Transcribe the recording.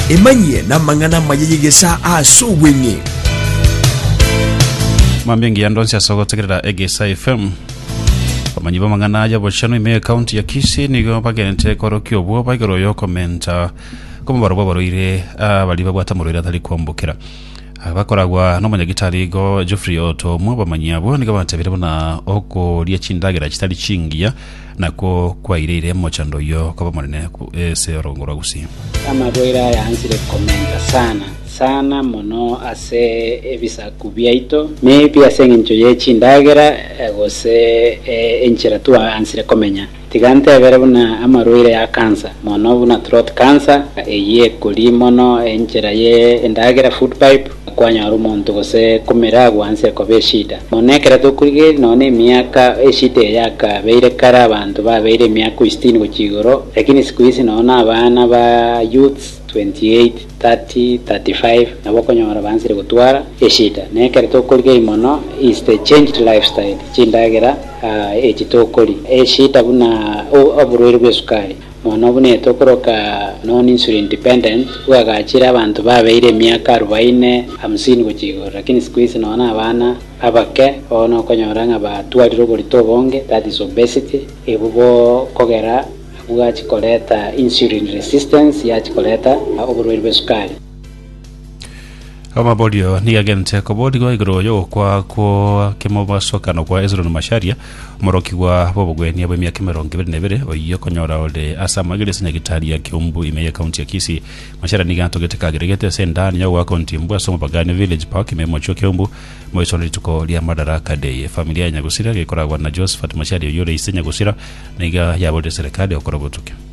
emanyie n'amang'ana amaya y'egesaa ase obweng'e mambia engiya ndonsi ase ogotegerera egesa fm omanyi b'amang'ana aya bochano ime ekaunti ya kisi nigo bagente korokia obwo baigoro yokomenta komobaro bw'abaroire abari babwata morwaire atari kwambokera Aba bakoragwa nomonyagitari igo Geoffrey Oto omw'abamanyi abwo nigo batebire buna okoria chindagera chitari chingiya nakwo kwaireire mochando oyio koba omonene ase orogongo rwa Gusii. Amaboira aya ansire komenta sana sana mono ase ebisaku biaito, maybe ase engencho ye chindagera gose enchera tu ansire komenya. Tiga ntebere buna amarwaire a kansa, mono buna throat cancer, eyio ekoria mono enchera ye endagera, food pipe, nakwanyora omonto gose komera agwo anse ekoba eshida mono ekero tokorigereria nonya nemiaka eshida eye yakabeire kare abanto babeire emiaka o sitini gochia igoro lakini siku hizi nonya na abana ba youths 28, 30, 35 nabo okonyora bansire gotwara eshida nekero tokorigereria mono is the changed lifestyle chindagera. Echi tokoria eshida buna oborwaire bw'esukari mono buna eyo tokoroka non-insulin dependent, bwagachire abanto babeire emiaka arubaine, hamsini gochia igoro, lakini siku hizi nonya na abana abake bono okonyora ng'a batwarire oborito obonge, that is obesity, ebu bo kogera bwachi koreta insulin resistance yachi koreta oborwaire bw'esukari. Amaborio nigo agente koborigwa igoro y'ogokwa kwa kemobasokano kwa Hezroni Masharia, omorokigwa bw'obogwenia bw'emiaka emerongo ebere na ebere, oyio okonyora ore ase amagere ase Nyagitari ya Kiumbu ime y'Ekaunti ya Kisii. Masharia nigo atogete kageregete ase endani ya ogoaka ontimbu ase omopakano Village Park ime y'omochie o Kiumbu, moisore rituko ria Madaraka Day. Efamiri ya Nyagusira, gekoragwa na Josephat Masharia oyio ore ise Nyagusira, nigo yaborire serekari gokora obotuki.